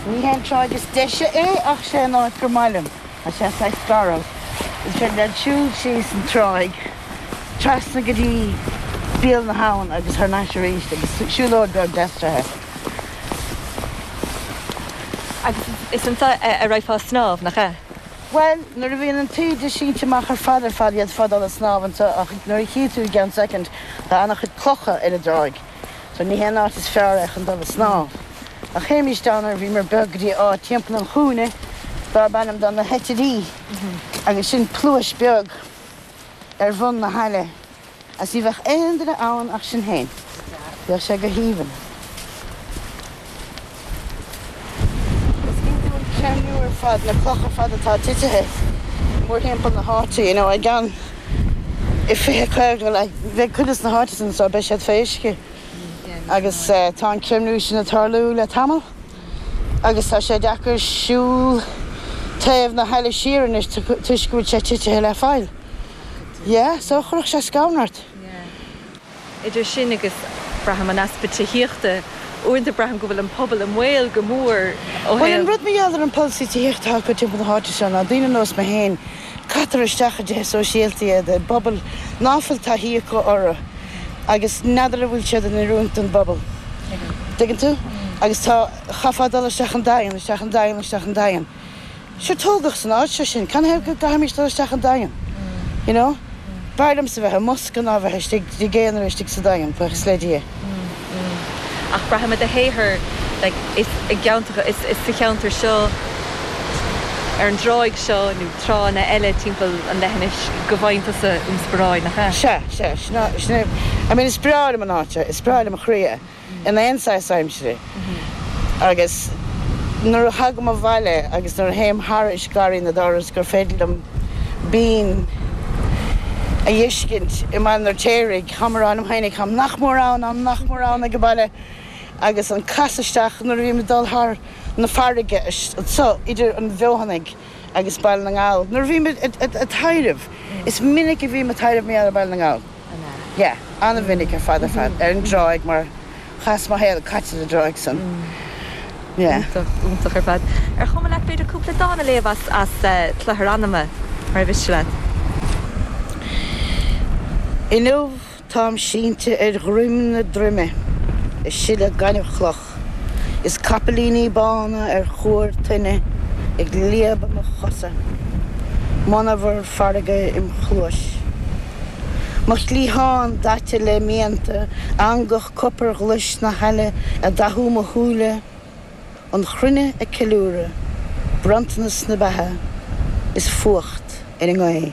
Ní hé an tráigh is deise é ach sé an áit gur maith liom tá sé saghas garbh. Ansin led' shiúl síos an tráigh, trasna go dtí Béal na hAbhann agus thar n-ais aríst agus siúlóid bheag deas-treithe. Agus is anso a raghfá ag snámh, nach ea? Bhuel, nuair a bhíonn an taoide sínte amach ar fad ar fad d'fhéadfá dul a' snámh anso ach mar a chífidh tú i gceann soicind tá ana-chuid clocha ar an dtráigh. Bhuel, ní hé an áit is fearr é chun dul ag snámh. Ach théimís down nuair a bhíomar beag go dtí áit timpeall an chúinne darb ainm dó Na hEitirí agus sin pluais beag ar bhun na haille agus ní bheadh aon duine ann ach sinn féin. Bhíodh sé go haoibhinn. Is iondúil an creimiú ar fad na clocha ar fad atá titithe mórthimpeall na háite, you know, i gceann i fiche, caoga bliain, bheidh cuid de na háiteanna so, beidh siad fé uisce agus tá an creimiú sin ag tarlú le tamall agus tá sé deacair siúl taobh na haille siar anois toisc go bhfuil sé titithe le faill. Yeah, so chuirfeadh sé scanradh ort. Idir sin agus, braithim, an easpa tithíochta, uaireanta braithim go bhfuil an pobal i mbaol go mór ó thaobh. Bhuel, an rud mar gheall ar an pholasaí tithíochta atá acu timpeall na háite seo ná daoine ar nós mé féin, caitear isteach i dtithe sóisialta iad, i bpobail ná fuil taithí acu orthu agus n'fheadar an bhfuil siad in oiriúint don bpobal. Tuigeann tú? Agus tá, chaithfeá dul isteach an Daingean, isteach an Daingean, isteach an Daingean. Sea, tógadh san áit seo sinn. Canathaobh go gcaithfimid dul isteach an Daingean, you know? B'fhearr liomsa bheith i mbosca ná bheith istigh i gcónaí istigh sa Daingean, buíochas le Dia. Mm, mm. Ach braithim i do shaothar, like, is i gceantracha, is sa cheantar seo, ar an dtráigh seo nó tránna eile timpeall an leithinis go bhfaigheann tusa ionsparáid, nach ea? Sea, sea. Sin é, sin é. I mean, is breá liom an áit seo, is breá lem chroí é. in aon saghas aimsire, agus nuair a thagaim abhaile agus nuair a théim thairis Garraí na dTor is gur féidir liom binn a fheiscint i mBaile an Fheirtéaraigh, táim ag rá liom féin, táim nach mór ann, táim nach mór ann ag baile, agus an casadh isteach nuair a bhím ag dul thar na farraige anseo idir an bhFeothanaigh agus Baile na nGall, nuair a bhím ag taidhreamh, is minic a bhím ag taidhreamh ar Bhaile na nGall. an ea? Yeah, an-mhinic ar fad ar fad. Ar an dtráigh mar tá mo shaol caite ar an dtráigh san. Yeah. Iontach, iontach ar fad. Ar chuma leat b'fhéidir cúpla dán a léamh as, as eh, Cloithear Anama, mara miste leat? Inniu táim sínte ar dhroim na droime, i sileadh gaineamhchloch. Ach is capaillíní bána ar chúr toinne ag líobadh mo chosa, monabhar farraige im chluais. Mo chliathán daite le mianta, eangach copair ghlais na haille ag dathú mo shúile, an chruinne ag ceiliúradh, bronntanas na beatha is fuacht ar an ngaoth.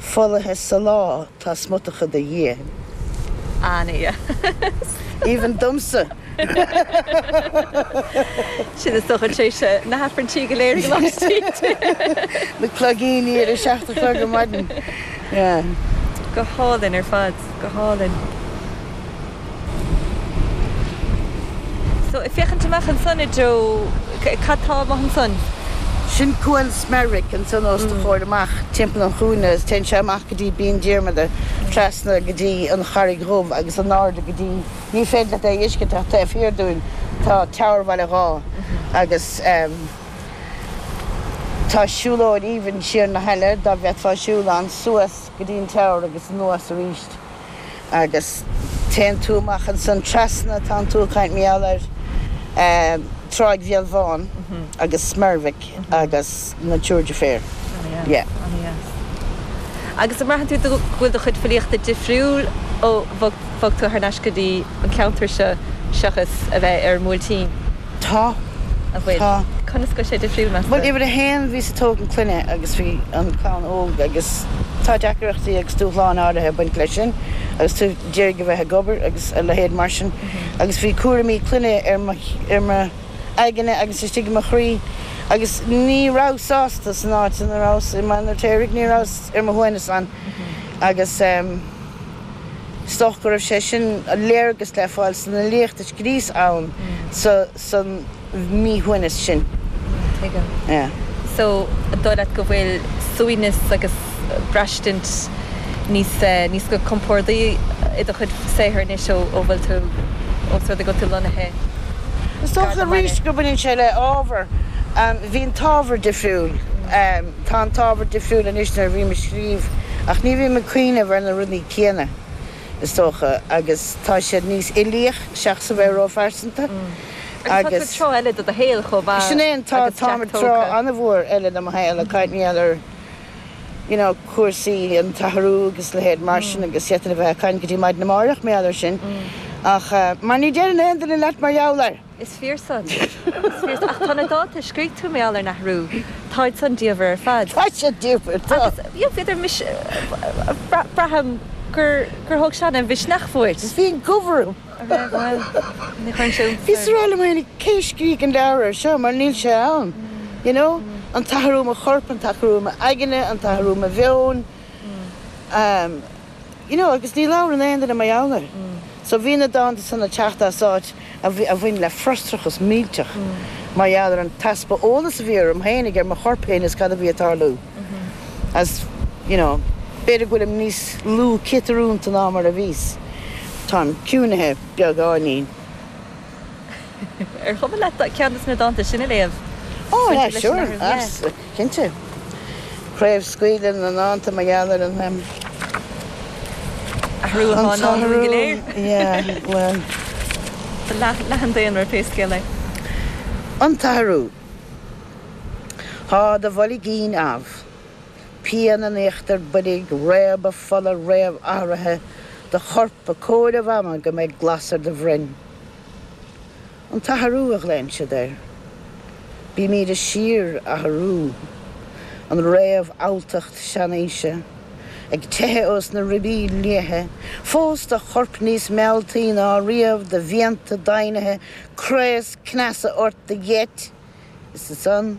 Folaithe sa lá tá smutacha de Dhia. An ea? Even domsa! Sin is dócha tar éis na haifrinntí go léir ag laistiar. Na cloigíní ar a seacht a chlog ar maidin. Go hálainn ar fad. Go hálainn. So, ag féachaint amach ansan i dtreo, cad tá amach ansan? Sin Cuan Smerwick ansan os do chomhair amach timpeall an chúinne is téann sé amach go dtí Binn Diarmada, trasna go dtí an Charraig Dhubh agus in airde go dtí, ní féidir leat é a fheiscint ach taobh thiar dúinn tá Tower Bhaile Dháith agus ehm tá siúlóid aoibhinn siar na haille dá bhféadfá siúl ann, suas go dtí an Tower agus anuas aríst. agus téann tú amach ansan trasna, tánn tú ag caint mar gheall ar Tráigh Bhéal Bhán agus Smerwick agus na Triúr Deirféar. Yeah. Ana dheas. Agus an mbraitheann tú go bhfuil do chuid filíochta difriúil ó bhog tú thar n-ais go dtí an ceantar seo seachas a bheith ar an mBuailtín? Tá. An bhfuil? Tá. Conas go bhfuil sé difriúil, meas tú? Bhuel, uimhir a haon, bhíos ag tógaint clainne agus bhí an clann óg agus tá deacaireachtaí agus dúshláin áirithe ag baint leis sin agus tú d'iarraidh a bheith ag obair agus a leithéid mar sin agus bhí cúraimí clainne ar mo, ar mo aigne agus istigh i mo chroí agus ní rabhas sásta san áit ina rabhas i mBaile an Fheirtéaraigh, ní rabhas ar mo shuaimhneas ann agus ehm. is dócha go raibh sé sin a léargas le fáil san fhilíocht a scríos ann sa mhíshuaimhneas sin. Tuigim. Yeah. So, an dóigh leat go bhfuil suaimhneas agus braistint níos, níos go compordaí i do chuid saothar anois ó, ó bhfuil tú, ós rud é go bhfuil tú lonnaithe Is dócha arís go bhaineann sé le ábhar, bhí an t-ábhar difriúil. Tá an t-ábhar difriúil anois nuair a bhím ag scríobh, ach ní bhím ag cuimhneamh ar na rudaí céanna, is dócha, agus tá siad níos uilíoch, seachas a bheith ró-phearsanta. Agus tá tú ag treo eile de do shaol, chomh maith, agus Jack tógtha. Sin é an t-ádh, táim ag treo an-mhór eile de mo shaol, ag cuimhneamh ar you know cúrsaí an t-athrú agus leithéid mar sin agus d'fhéadfainn a bheith ag caint go dtí maidin amáireach, mar gheall air sin, ach, mar ní deireann aon duine leat mar gheall air! Is fíor san. Is fíor. Ach tá na dánta a scrígh tú mar gheall ar an athrú. Táid san diamhair ar fad. Tá siad diamhair, tá. Agus bhíodar mis. braithim gur gur thóg sé ana-mhisneach uait. Bhí an gomh orm. An raibh? Bhuel, ní chuireann sé iontas orm. Bhíos ag rá cé a scrígh an leabhar air seo mar níl sé ann. You know? An t-athrú i mo chorp, an t-athrú i m'aigne, an t-athrú i mo mheon. You know, agus ní labhrann aon duine mar gheall air. So bhí na dánta san ag teacht as áit a bhain le frustrachas millteach mar gheall ar an t-easpa eolas a bhí orm féinig ar mo chorp féin is cad a bhí ag tarlú is, you know, b'fhéidir go bhfuilim níos lú ciotrúnta ná mar a bhíos. Táim ciúnaithe beagáinín. Ar chuma leat ceann des na dánta sin a léamh? Ó, yeah, sure, cinnte. Craobhscaoileadh na ndánta mar gheall ar an, em, athrú atá i ndán dúinn go léir. Yeah, well. Leath an daonra, pé scéal é. An t-athrú. Tá do bhoilgín amh. pian in íochtar boilg, réabadh fola, réamhathruithe do chorp, ag comhaireamh ama go mbeidh glas ar do bhroinn. An t-athrú a ghlaonn siad air. Bímid ag síorathrú. An réamhfhabhtacht seanaoise ag teitheadh ós na ribí liatha, fós do chorp níos mealltaí ná riamh, do mhianta daingnithe, craos cneasa ort, do gheit, is ansan,